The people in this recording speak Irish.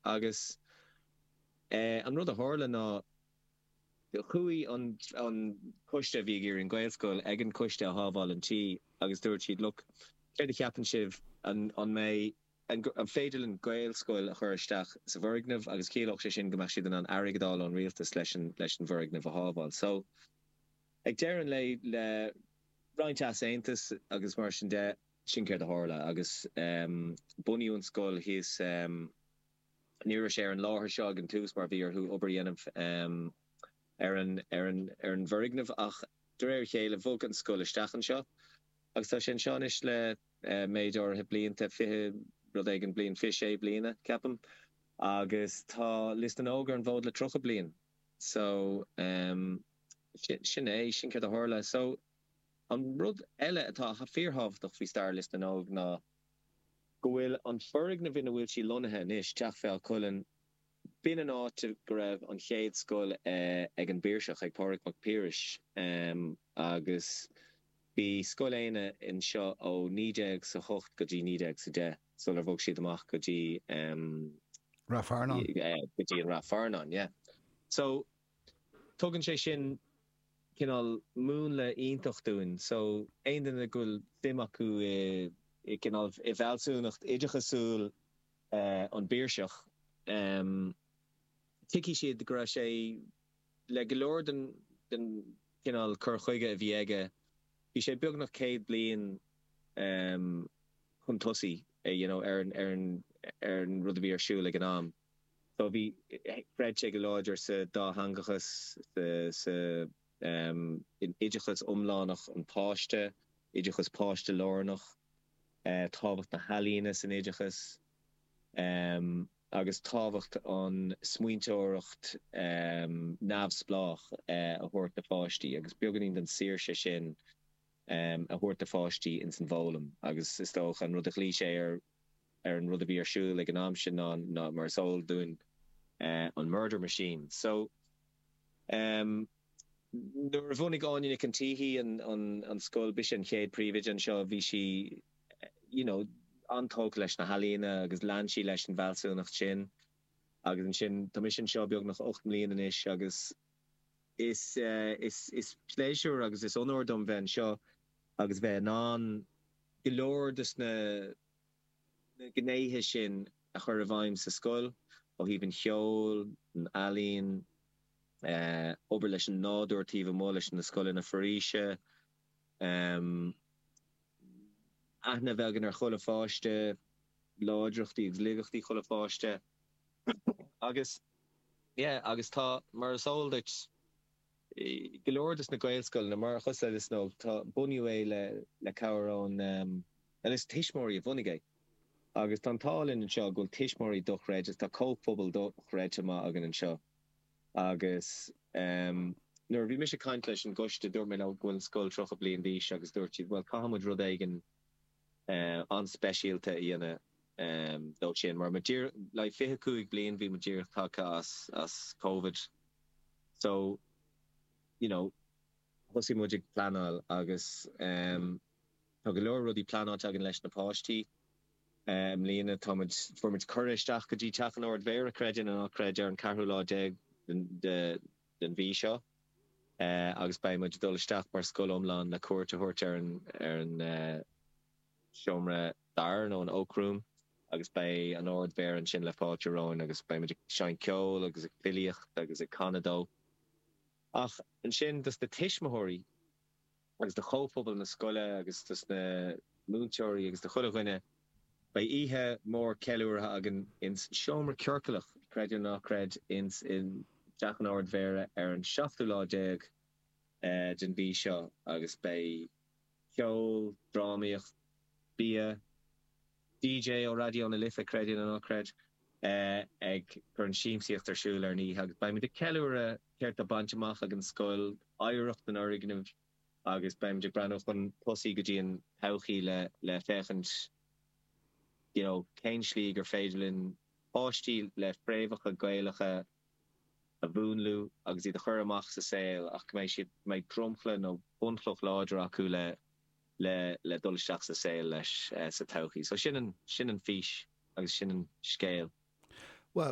Agus an rud a tharla ná, chuaigh an coiste a bhí ag iarraidh an Gaelscoil ag an coiste a shábháil an tí agus dúirt siad, look, céard a cheapann sibh, an mbeidh, an féidir linn Gaelscoil a chur isteach sa bhfoirgneamh agus ciallódh sé sin go mbeadh siad in ann airgead a fháil ón rialtas leis an bhfoirgneamh a shábháil. So, ag deireadh an lae, le roinnt easaontas agus mar sin de, Sin céard a tharla agus bunaíodh an scoil thíos. Ní raibh sé ar an láthair seo ag an tús mar bhí orthu obair a dhéanamh ar an bhfoirgneamh ach de réir a chéile bhog an scoil isteach anseo agus tá sé anseo anois le méid áirithe blianta, fiche rud éigin bliain, fiche sé bliana, ceapaim, agus tá Lios na nÓg ar an bhfód le tríocha bliain. So, sin é, sin céard a tharla. So. An rud eile atá fíorthábhachtach faoi stair Lios na nÓg ná go bhfuil an foirgneamh ina bhfuil sí lonnaithe anois, Teach Feadha Cuilinn, b'in an áit go raibh an chéad scoil ag an bPiarsach, ag Pádraig Mac Piarais, agus bhí Scoil Éanna anseo ó naoi déag is a hocht go dtí naoi déag is a deich sular bhog siad amach go dtí go dtí Ráth Fearnáin. Tugann sé sin cineál múnla iontach dúinn so aon duine go bhfuil suim acu i cineál i bhfealsúnacht oideachasúil an bPiarsach tuigfidh siad go raibh sé le go leor den chineál cur chuige a bhí aige bhí sé beagnach céad bliain chun tosaigh you know ar an rud a bhí ar siúl ag an am. So bhí, chreid sé go láidir sa dátheangachas, sa, in oideachas iomlánach an pháiste, oideachas páistelárnach, tábhacht na healaíona san oideachas, agus tábhacht an smaointeoireacht neamhspleách a thabhairt do pháistí agus beagainín den saoirse sin a thabhairt do pháistí ins an bhfoghlaim agus is dócha an rud a ghlaoigh sé air ar an rud a bhí ar siúl ag an am sin ná ná mar is eol dúinn an Murder Machine so ehm nuair a bhunaigh Áine Nic an tSíthigh an an an scoil b'ise an chéad príomhoide anseo bhí sí you know an-tógtha leis na healaíona agus lean sí leis an bhfealsúnacht sin agus ansin tá mise anseo beagnach ocht mbliain anois agus is eh is is pléisiúr agus is onóir dom bheith anseo. agus bheith in ann go leor de na gnéithe sin a chur i bhfeidhm sa scoil ó thaobh an cheoil, an ealaíon, em, obair leis an nádúr taobh amuigh leis na scoileanna foraoise, em, aithne a bheith againn ar chuile pháiste, láidreachtaí agus laigeachtaí chuile pháiste agus, yeah, agus tá, mar is eol duit. go leor de na Gaelscoileanna, mar shampla Lios na nÓg, tá, bunaíodh é le, le cabhair ón, nó is tuismitheoirí a bhunaigh é. Agus tá an t-ádh linn anseo go bhfuil tuismitheoirí dochreidte agus tá comhphobal dochreidte maith againn anseo. Agus em nuair a bhí mise ag caint leis an gcoiste, dúirt mé leo go bhfuil an scoil 30 bliain d'aois agus dúirt siad, bhuel, caithfidh muid rud éigin, an-speisialta a dhéanamh dó sin. Mar like fiche cúig bliain bhí muid díreach tagtha as as Covid so you know thosaigh muid ag pleanáil agus em tá go leor rudaí pleanáilte againn leis na páistí. Eh i mbliana tá muid fuair muid cuireadh isteach go dtí Teach an Ard-Mhéara creid é nó ná creid ar an ceathrú lá déag de den mhí seo agus beidh muid ag dul isteach mar scoil iomlán le cuairt a thabhairt ar an seomra darach nó an Oak Room agus beidh an Ard-Mhéara ansin le fáilte romhainn agus beidh muid ag seinnt ceoil agus ag filíocht agus ag canadh dó ach ansin dos na tuismitheoirí. agus do chomhphobal na scoile agus dos na múinteoirí agus do chuile dhuine. Beidh oíche mhór ceiliúrtha againn ins an seomra ciorcalach, creid é nó ná creid, ins i dTeach an Ard-Mhéara ar an seachtú lá déag den mhí seo agus beidh ceol, drámaíocht, bia, DJ ó Raidió na Life, creid é nó ná creid é, ag cur an siamsaíocht ar siúl ar an oíche agus beimid ag ceiliúradh céard tá bainte amach ag an scoil, oidhreacht an fhoirgnimh agus beimid ag breathnú chun tosaigh go dtí an todhchaí le féachaint you know cén tslí gur féidir linn páistí le fréamhacha Gaelacha a mhúnlú agus iad a chur amach sa saol ach go mbeidh siad go mbeidh dromchla nó bunchloch láidir acu le le dul isteach sa saol leis sa todhchaí. So sin sin an fís agus sin an scéal.